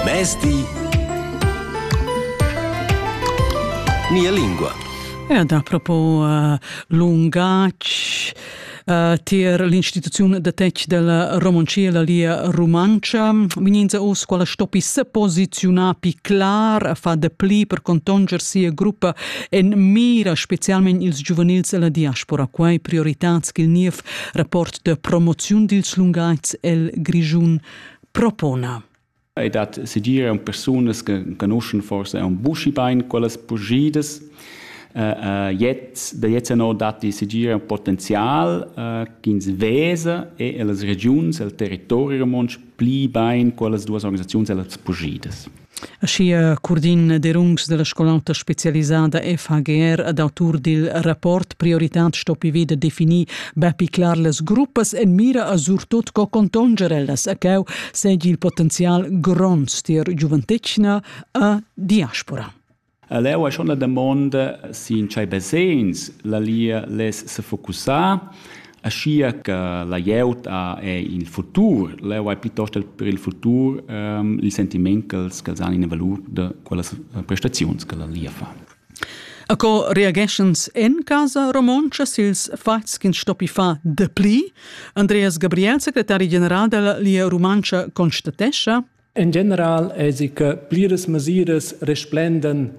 Mezdi Mia lingua. Ja, da propo uh, lungatg uh, tier l'instituziun de tec della Romoncia e la lia Romancia. Mininza us quala stoppi se posizionar pi clar, fa de pli per contonger sia gruppa en mira, specialment ils giuvenils e la diaspora. Quai prioritats che il niev rapport de promoziun dils lungatgs el Grischun propona. Ei dat sedir un persunas che conoscen forse un buschi bein quellas pugidas. Uh, uh, jetzt, da jetzt no dat die sedir un potenzial uh, ch'ins vesa e ellas regions, el territori romontsch pli bein quellas duas organisaziuns ellas pugidas. Aschia Curdin Derungs dalla scolauta specialisada FHGR ad autur dil rapport Prioritad stoppi vida definir bepi clar las gruppas en mira a surtut co contonger ellas a cau segi il potenzial gronds tier giuventetgna a diaspora. Leu ei schon la damonda si in tschei basegns la Lia less sefocussar, aschia che la glieud ha il futur. Leu ei piuttost per il futur il sentiment ch'els ch'els han ina valur da quellas prestaziuns che la Lia fa. A co reageschens en casa romontscha sils fatgs ch'ins stoppi far dapli? Andreas Gabriel, secretari general della Lia Rumantscha, constatescha En general èsi che pliras mesiras resplendan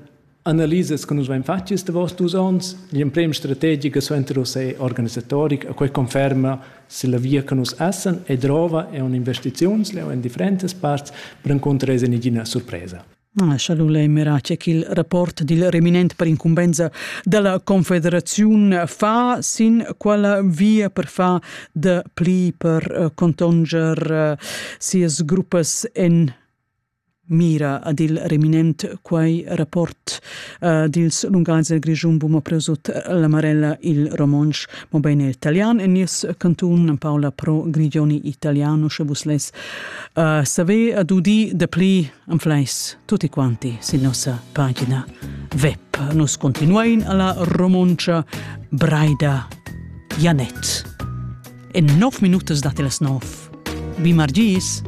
analisas che nus vain fatg quest davos dus onns. L'emprema strategica suenter uss è organisatoric e quai conferma se la via che nus essan e drova è un'investiziuns, è en differentas parts, per incontrar es nagina surpresa. Lascia lei Merace che il rapporto del reminente per incumbenza della Confederazione fa sin quella via per far de pli per uh, contonger uh, sias gruppas en mira ad il reminent quai rapport uh, dils Lungaise Grigiun Buma Presut la Marella il Romonsch mo bene italian en nies canton Paola Pro Grigioni italiano sche vus les uh, save ad udi de pli Anfleis tutti quanti sin nossa pagina web. Nus continuein alla romoncia Braida Janet. En 9 minutas date las 9. Vi margis!